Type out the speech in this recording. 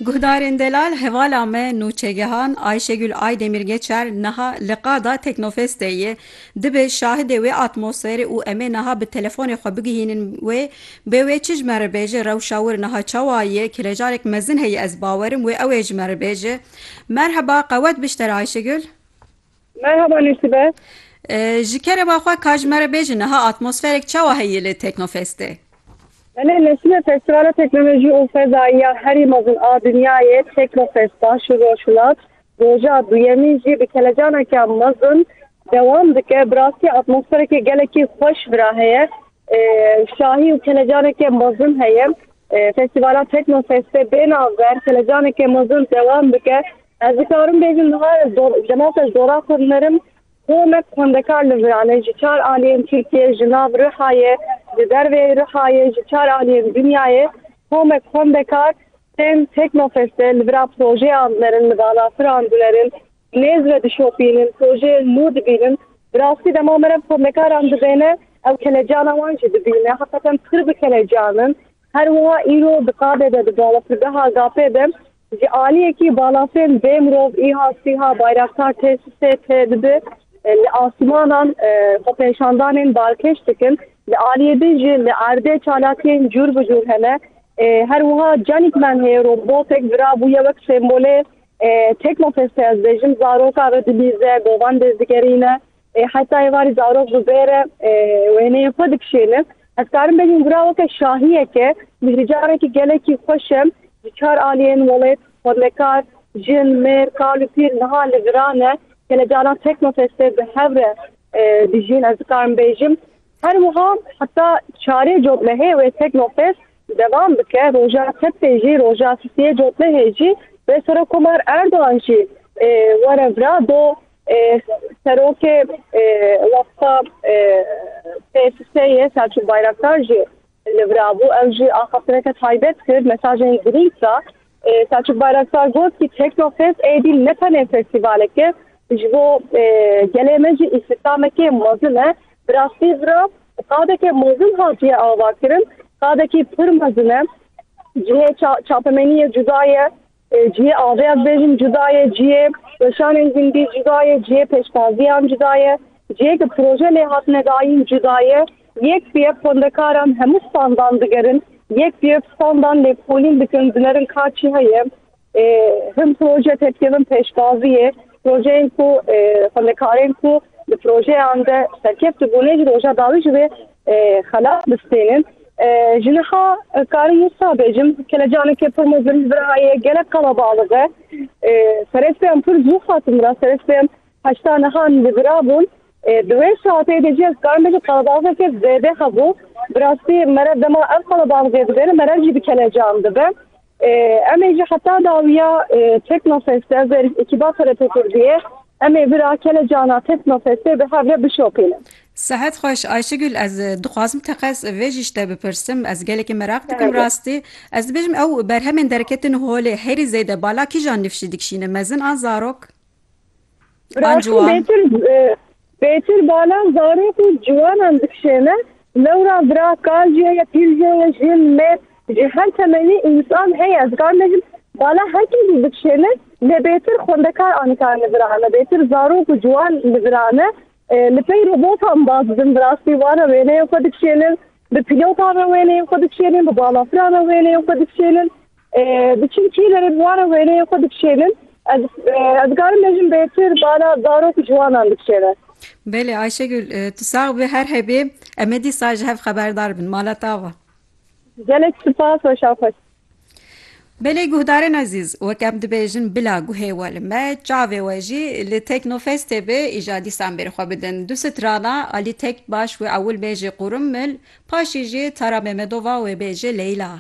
Guhdarên delal hevala me nûçegihan Ayşegül Aydemir Geçer niha li qada Teknofestê ye. Dibe şahidê wê atmosferê û em ê niha bi telefonê xwe bigihînin wê. Bê wê çi ji me re bêje rewşa wir niha çawa ye? Kelejarek mezin heye ez bawerim wê ew ê ji me re bêje. Merheba qewet bişter Ayşegül. Merhaba Nûsibe. Ji kerema xwe ka ji me re bêjin niha atmosferek çawa heye li Teknofestê? Belê Nesime Festîvala Teknolojî û Fezayî ya herî mezin a dinyayê Teknofest baş û rojhilat roja duyemîn jî bi kelecaneke mezin dewam dike. Bi rastî atmosfereke gelekî xweş vira heye. Şahî û kelecaneke mezin heye. Festîvala Teknofestê bênavber kelecaneke mezin dewam dike. Ez dikarim bêjim niha demawta ji dora xwe mirim. Xwe me xwendekar li Viranê ji çar aliyên Tirkiyê, ji nav Rihayê, ji dervê Rihayê, ji çar aliyên dinyayê xwe me xwendekar tên Teknofestê li vira projeyan derin, li balafiran dinerin, nêz ve dişopînin, projeyên nû dibînin. Bi rastî dema me re xwendekaran dibêne ew kelecana wan jî dibîne. Heqeten pir bi kelecan in. Her wiha îro di qadê de di balafirgeha GAP'ê de Ji aliyekî balafirn bê mirov îha sîha bayraktar tê sisê tê dibi li asmanan xwepêşandanên balkêş dikin. Li aliyê din jî li erdê çalakiyên cûr bi cûr hene. Her wiha Canîkman heye robotek vira bûye wek sembolê Teknofestê ez bêjim zaroka re dilîze, govan dêzdigerîne. Ê heta êvarî zarok bibêre wêneyên xwe dikişêne. Ez karim bêjim ku ra weke şahiyeke mîhrîcarekî gelekî xweş e. Ji çar aliyên welêt, xwendekar, jin, mêr, kal û pîr niha li viran e. Gelê caran Teknofestê bi hev re dijîn ez dikarim bêjim. Her wiha heta çarê cotlehê wê Teknofest devam bike. Roja sebtê jî, roja sisiyê cotlehê jî wê Serokkomar Erdogan jî were vira do Serokê wexta PSS'ê Selçûk Bayraktar jî li vir bû. Ew jî axaftineke taybet kir, mesajên girîng da. Selçûk Bayraktar got ku Teknofest êdî ne tenê festîvalek e, ji bo gelê me jî îstîhdamekê mezin e. Bi rastî vir a qadeke mezin hatiye avakirin, qadekî pir mezin e. Cihê çapemeniyê cuda ye, Cihê avê ez bêjim cuda ye, cihê weşanên gundî cuda ye, cihê pêştaziyan cuda ye, cihê ku proje lê hatine dayîn cuda ye. Yek bi yek xwendekaran hemû standan digerin, yek bi yek standan lêkolîn dikin, dinerin ka çi heye. Hin proje tê dikevin pêştaziyê, projeyên ku xwendekarên ku di projeyan de serkeft dibûnê ji roja dawî ji vê Xelat bistênin. Ji niha karin wisa bêjim, kelecaneke pir mezin li vir heye, gelek qelebalix e. Serê sibê em pir zû hatin vira, serê sibê em heşta niha li vira bûn. Di wê saetê de jî ez karim bêjim qelebalixeke zêde hebû. Bi rastî mere dema ev qelebalixê dibe ne mere jî bi kelecan dibe. Em ê ji heta dawiya Teknofest de ber ekîba TRT Kurdiyê em ê bira kelecana Teknofestê bi hev re bişopînin. Sehet xweş Ayşegül ez dixwazim teqez vê jî şte bipirsim ez gelekî meraq dikim rastî ez dibêjim ew berhemên derketin holê herî zêde bala kîjan nifşî dikşîne mezin an zarok an ciwan. Pêtir balan zarok û ciwanan dikişêne, lewra vira, kal jî heye, pîl jî heye, jin, mêr, ji her temenî însan heye, ez dikar bêjim bala her kê jî dikişêne, lê bêtir xwendekar a nikar li vir ane, bêtir zarok û ciwan li vir ane, li pey robotan baz didin, bi rastî wan re wêneyên xwe dikişênin, Bi pîlotan re wêneyên xwe dikişênin, bi balafîran re wêneyên xwe dikişênin, diçin kîle re bi wan re wêneyên xwe dikişênin. Ez ez dikarim bêjim bêtir bala zarok û ciwanan dikişêne. Belê Ayşegül, tu sax bî her hebê. Em ê dîsa ji hev xeberdar bin. Mala tav e. Gelek sipas, weşan xweş. Belê guhdarên ezîz, wek em dibêjin bila guhê we li me, çavê we jî li Teknofestê be, îja dîsan bêrî xwe bidin. Du strana alî tek baş wê ewil bêjê Qûrimmil, paşî jî Tara Memedova wê bêjê Leyla.